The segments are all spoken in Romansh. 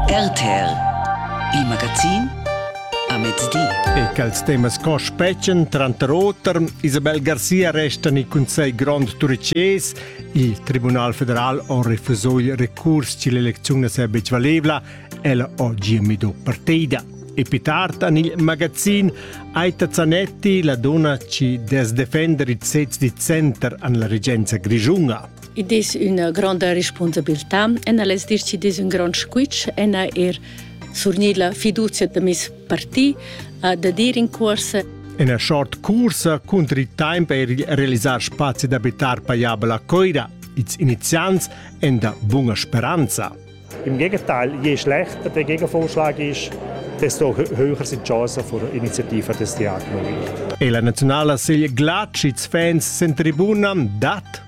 RTL Il magazin a mezdi. E quels temas co spetgan, tranter otern, Isabel Garcia resta in Conselh Grond Turcés. Il Tribunal federal ha refuso il recurs che l'elezione non è betg valevla. Ella ha gia medo partida. E più tardi en il magazin Aita Zanetti la donna ci desdefender il sez di center an la regenza grigiunga. Id es üna gronda respunsabiltà e al es decidis ün grond squitsch e na eir surgnir la fiduzia da meis parti da dir in cuorsa Ina short cursa cunter il tempo per realisar spazi d'abitar paiabel a Coira. Ils iniziants en da bunga speranza. Im Gegenteil, je schlechter der Gegenvorschlag ist, desto höher sind die Chancen für Initiative des Diakon. E la nazionala sigl Glatschits fans sen tribuna dat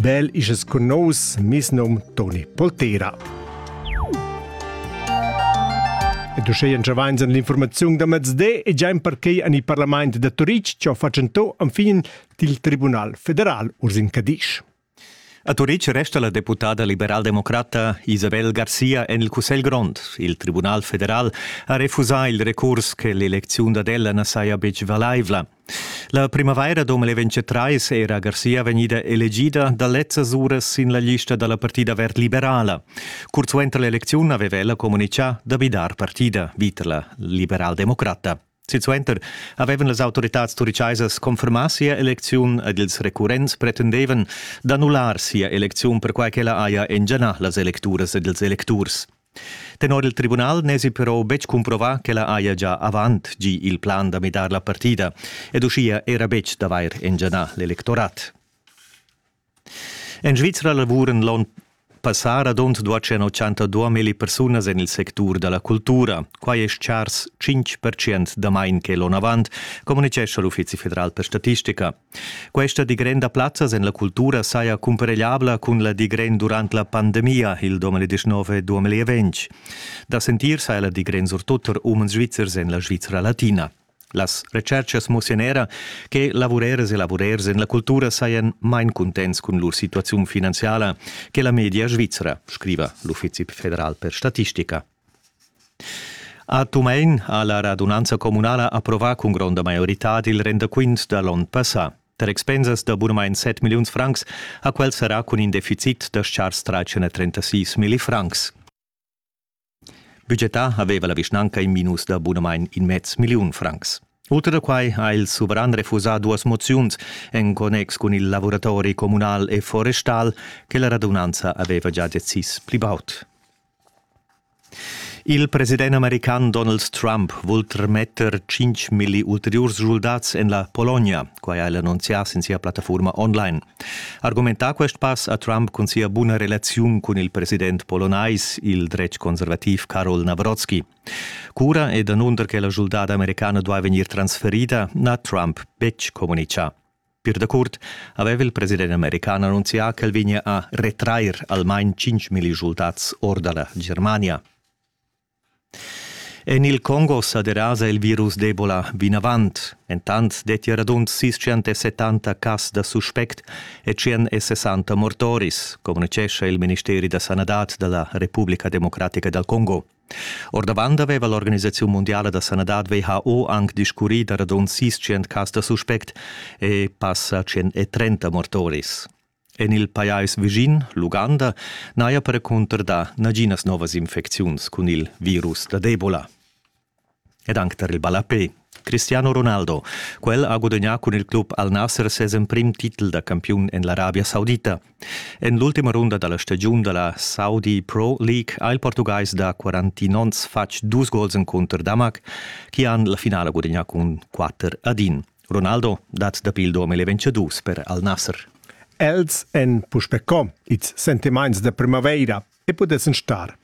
Bel isches cun nous, mis nom Toni Poltera. Et uschè entschavains an l'informaziun da mezde e giain perquai an il Parlament da Turitg ciò fatschentò am fin til Tribunal federal Ursin Cadisch. A Turitg resta la deputada liberaldemocrata Isabel Garcia en il Cussegl grond. Il Tribunal federal ha refusà il recurs che l'elecziun ad ella na saja betg valaivla. La primavaira 2023 era Garcia vegnida elegida da lezzas uras sin la lista da la partida verd liberala. Curt suenter l'elecziun aveva ella communitgà da bidar partida, vita la liberaldemocrata. Silsuenter avevan las autoritads turicaisas confermà sia elecziun ed ils recurrents pretendevan d'annullar sia elecziun perquai ch'ella haja engianà las electuras ed ils electurs. Tenor il tribunal n'èsi però betg cumprovà ch'ella haja già avant gì il plan da midar la partida ed uschia era betg d'avair engianà l'electorat. En Svizra lavuran l'onn passà radund 282 milli persunas en il sectur da la cultura. Quai è chars 5% damain che l'onn avant, communitgescha l'Uffizi federal per statistica. Questa digrenda plazzas en la cultura saja cumparegliabla cun la digren durant la pandemia il 2019-2020. Da sentir sa la digren surtut tar umens svizzers en la Svizra latina. Las retscherchas mussian era che lavurers e lavurers en la cultura sajan main cuntents cun lur situaziun finanziala che la media svizra, scriva l'Uffizi federal per statistica. A Tumein ha la radunanza communala approvà cun gronda maioritad il rendaquint da l'onn passà. Tar expensas da bunamain 7 milliuns francs ha quel serrà cun in deficit da chars 336 milli francs. Budgetà aveva la vischnanca in minus da bunamain in mez milliun francs. Oltre da quai ha il suveran refusà duas moziuns en connex cun il lavoratori communal e forestal che la radunanza aveva già decis pli baud. Il president american Donald Trump vul trametter 5 milli ulteriurs schuldats en la Pologna. Quai ha el annunzià sin sia plattafurma online. Argumentà quest pass ha Trump cun sia buna relaziun cun il president polonais, il dretg conservativ Karol Navrotsky. Cura e danunder che la schuldada americana duai vegnir transferida n'ha Trump betg communitgà. Pir dacurt aveva il president american annunzià ch'el vegnia a retrair almain 5.000 resultats or da la Germania. En il Congo sa derasa il virus d'Ebola vinavant. Entant detti radund 670 cas da suspect e 160 mortoris, communicescha il ministeri da sanadad da la Repubblica Democratica dal Congo. Ordavant aveva l'organisaziun mundiala da sanadad WHO anc discurrì da radund 600 cas da suspect e passa 130 mortoris. En il pajais vischin, l'Uganda, n'haja per cunter dà naginas novas infecziuns cun il virus da Ebola. ed anc tar il ballapè Cristiano Ronaldo. Quel ha gudagnà cun il club Al Nasser ses emprim titel da campiun en l'Arabia Saudita. En l'ultima runda da la stagiun da la Saudi Pro League ha il portugais da 49 onns fatg dus gols encunter Damac, che han la finala gudagnà cun 4 ad 1. Ronaldo dat dapi il dom il vencedus per Al Nasser. Els èn puspè com, ils sentimaints da primavaira e pudessan star